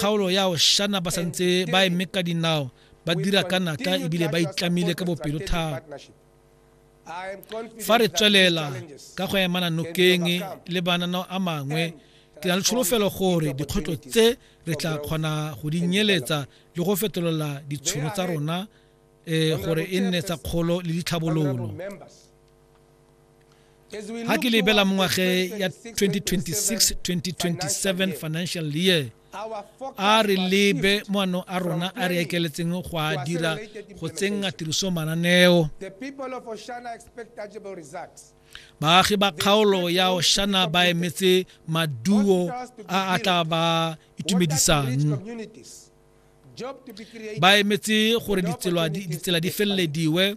kgaolo ya oshana ba santse ba eme ka dinao ba dira ka natla ebile ba itlamile ka bopelo thata fa re tswelela ka go emana nokeng le bananao a mangwe ke na le tsholofelo gore dikgwetlho tse re tla kgona go di nyeletsa le go fetolela ditšhono tsa rona um gore e nne tsa kgolo le ditlhabololo ga ke lebela mo ngwageng ya 2026-2027 financial year a re lebe moano a rona a re ekeletseng go a dira go tsenga tiriso mananeo baagi ba kgaolo ya oshana ba emetse maduo a a tla ba itumedisang ba emetse gore ditsela di felelediwe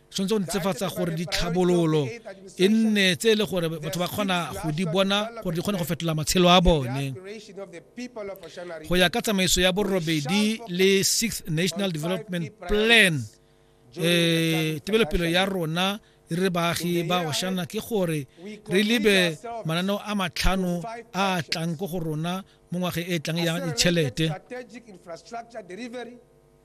tshwanetse go ntsefatsa gore ditlhabololo e nne tse e le gore batho ba kgona go di bona gore di kgone go fetola matshelo a bone go ya ka tsamaiso ya borobedi le sixth national development plan um tebelopelo ya rona re baagi ba oshana ke gore re lebe mananeo a matlhano a tlang ko go rona mo ngwageng e tlang ya ditšhelete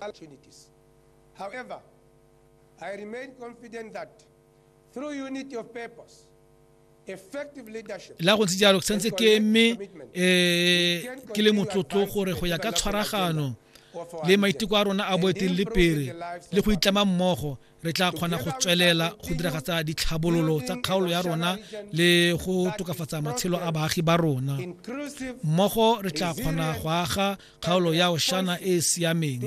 opportunities. However, I remain confident that through unity of purpose, effective leadership, la go ntse jalo ke santse ke eme um ke le motlotlo gore go ya ka tshwaragano le maiteko a rona a boeteledipele le go itlama mmogo re tla kgona go tswelela go diragatsa ditlhabololo tsa kgaolo ya rona le go tokafatsa matshelo a baagi ba rona mmogo re tla kgona go aga kgaolo ya oshana e e siameng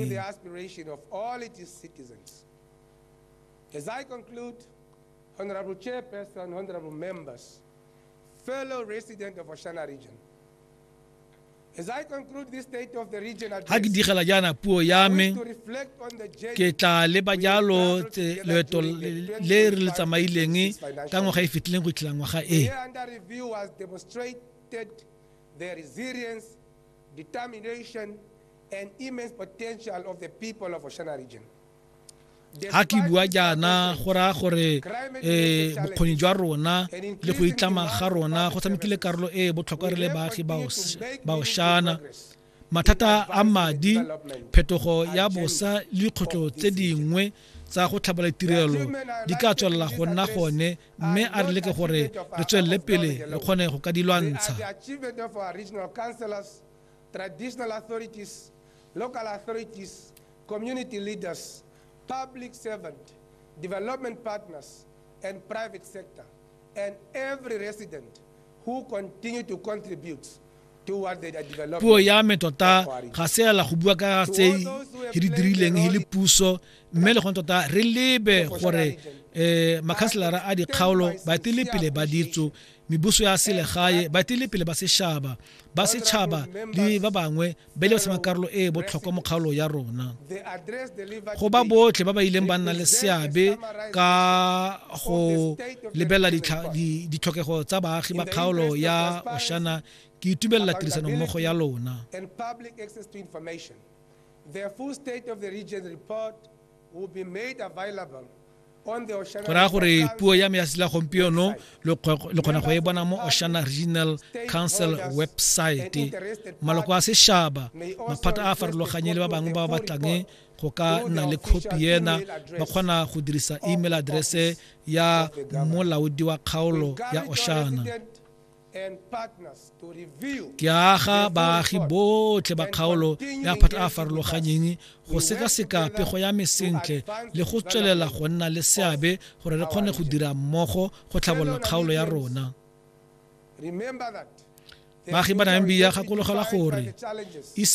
As I conclude, Honorable Chairperson, Honorable Members, fellow resident of Oshana region, ga ke digela jaana puo ya me ke tla leba jalo loeto le re le tsamaileng ka ngwaga e fetileng go itlhela ngwaga e the resilience, determination, and immense potential of the people of Oshana region. ga ke bua jaana go raya gore um bokgoni jwa rona le go itlama ga rona go tshamekile karolo e e botlhokwa re le baagi baoshana mathata a madi phetogo ya bosa le dikgotlo tse dingwe tsa go tlhabela tirelo di ka tswelela go nna gone mme a re leke gore re tswelele pele re kgone go ka di lwantsha traditional authorities, local authorities, community leaders, public servant, development partners, and private sector, and every resident who continue to contribute toward the development. puo ya me tota ga se ela go bua ka tse he di dirileng he le puso mme le gone tota re lebe gore um makhanselara a dikgaolo baetele pele ba ditso mebuso ya selegae baetele pele ba sešaba ba setšhaba le ba bangwe be le sena karolo e e botlhokwa mo kgaolo ya rona go ba botlhe ba ba ileng ba nna le seabe ka go lebelela ditlhokego tsa baagi ba kgaolo ya oshana ke itumelela tirisanommogo ya lona The full state of the region report will be made available go raya gore puo ya me ya sela gompieno le kgona go e bona mo oshana regional council website maloko a sešaba maphata a a farologanye le ba bangwe ba ba batlang go ka nna le khopi ena ba kgona go dirisa email address ya molaodi wa kgaolo ya oshana Ke aga baagi botlhe ba kgaolo ya phata a farologanyeng go sekaseka pego ya me sentle le go tswelela go nna le seabe gore re kgone go dira mmogo go tlhabolola kgaolo ya rona. Baagi ba Namibia gakologelwa gore isa